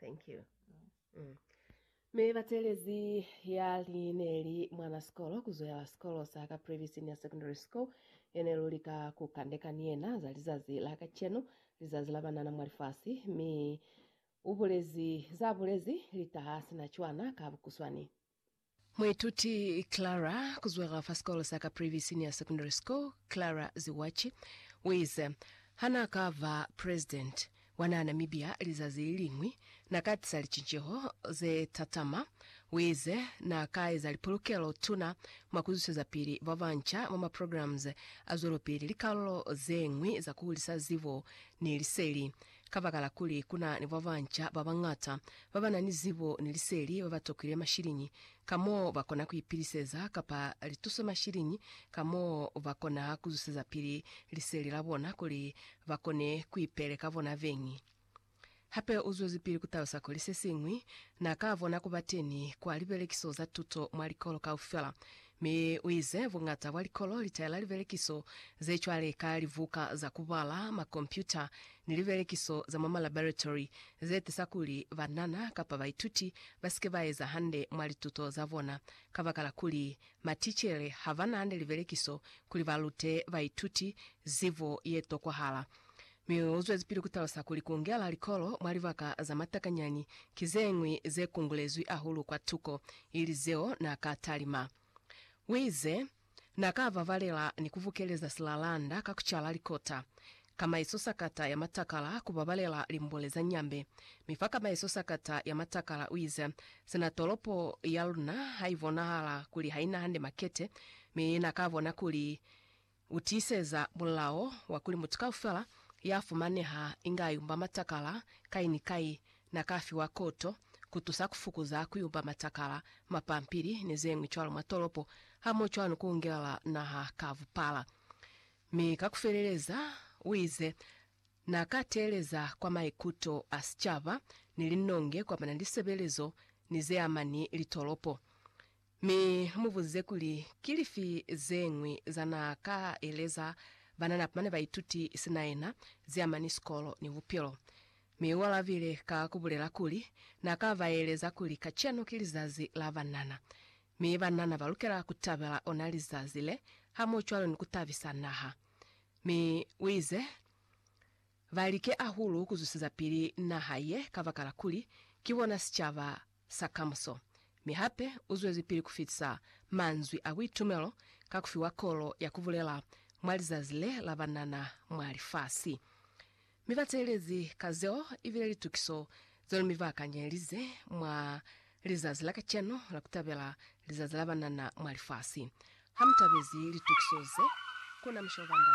Thank you. Mm. Mi batelezi ya li ne li mwana sikolo kuzoela sikolo sa Caprivi Senior Secondary School yene lu lika ku kandeka ni yena za lizazi la kacenu, lizazi la banana mwa lifasi, mi ubulezi za bulezi litaha sina cwana ka bukuswani. Muituti Clara, ku zwela fa sikolo sa Caprivi Senior Secondary School, Clara Ziwachi, uize, Ha na ka ba President wa naha Namibia lizazi liliñwi, na ka tisa licinceho ze tatama. Uize, Na ka eza lipulukelo tuna mwa ku zwisiza pili ba banca mwa ma programs a zwelopili, likalolo zeñwi za ku hulisa zibo ni liseli, Kabakala kuli ku na ni babanca ba bañata ba ba na ni zibo ni liseli ba ba tokile mashiliñi ka mo ba kona ku ipiliseza kapa litusomashiliñi ka mo ba kona ku zusezapili liseli la bona kuli ba kone ku ipele ka bona beñi. Hape u zwezipili ku talusa kuli se siñwi na ka bona ku bateni kwa libelekiso za tuto mwa likolo kaufela Mi u ize, Buñata bwa likolo li taela libelekiso ze cwale ka libuka za ku bala, makompyuta, ni libelekiso za mwa malaboratory ze tisa kuli banana kapa baituti ba si ke ba eza hande mwa lituto za bona, kabakala kuli matichere ha ba na hande libelekiso kuli ba lute baituti zibo ye tokwahala. Mi u zwezipili ku talusa kuli ku ngela likolo mwa libaka za matakanyani ki ze ñwi ze kungulezwi ahulu kwa tuko ili zeo n'a ka talima. U ize, N'a ka vavalela ni ku bukeleza silalanda ka ku cala likota, kamaiso sakata ya matakala ku babalela limbule za nyambe, mi fa kamaiso sakata ya matakala u ize, Sina tolopo ya luna ha i bonahala kuli ha i na hande makete, mi n'a ka bona kuli U tiiseza mulao wa kuli mutu kaufela ya fumaneha inga a yumba matakala kai ni kai na ka fiwa koto ku tusa ku fukuza ku yumba matakala, mapampili, ni ze ñwi cwalo mwa tolopo, hamoho cwalo ni ku ungelela naha ka bupala. Mi ka ku feleleza, u ize, Na ka teeleza kwa maikuto a sicaba ni linonge kwa ba na li sebelezo ni ze ama ni litolopo. Mi mu buze kuli, Ki lifi ze ñwi za na ka eleza banana bane ba ituti sina yena, ze amani sikolo ni bupilo? Mi u alabile ka ku bulela kuli, Na ka ba eleza kuli kacenu ki lizazi la banana, mi banana ba lukela ku tabela ona lizazi le hamohcwalo ni ku tabisa naha. Mi u ize, Ba like ahulu ku zwisiza pili naha ye kabakala kuli ki bona sicaba sa kamuso, mi hape u zwezipili ku fitisa manzwi a buitumelo ka ku fiwa kolo ya ku bulela mwa lizazi le la banana mwa lifasi. Mi ba teelezi ka zeo i bile litukiso zeo mi ba kanyelize mwa lizazi la kacenu la ku tabela Lizazi la Banana mwa Lifasi. Ha mu tabezi litukiso ze, ku na musha o banda.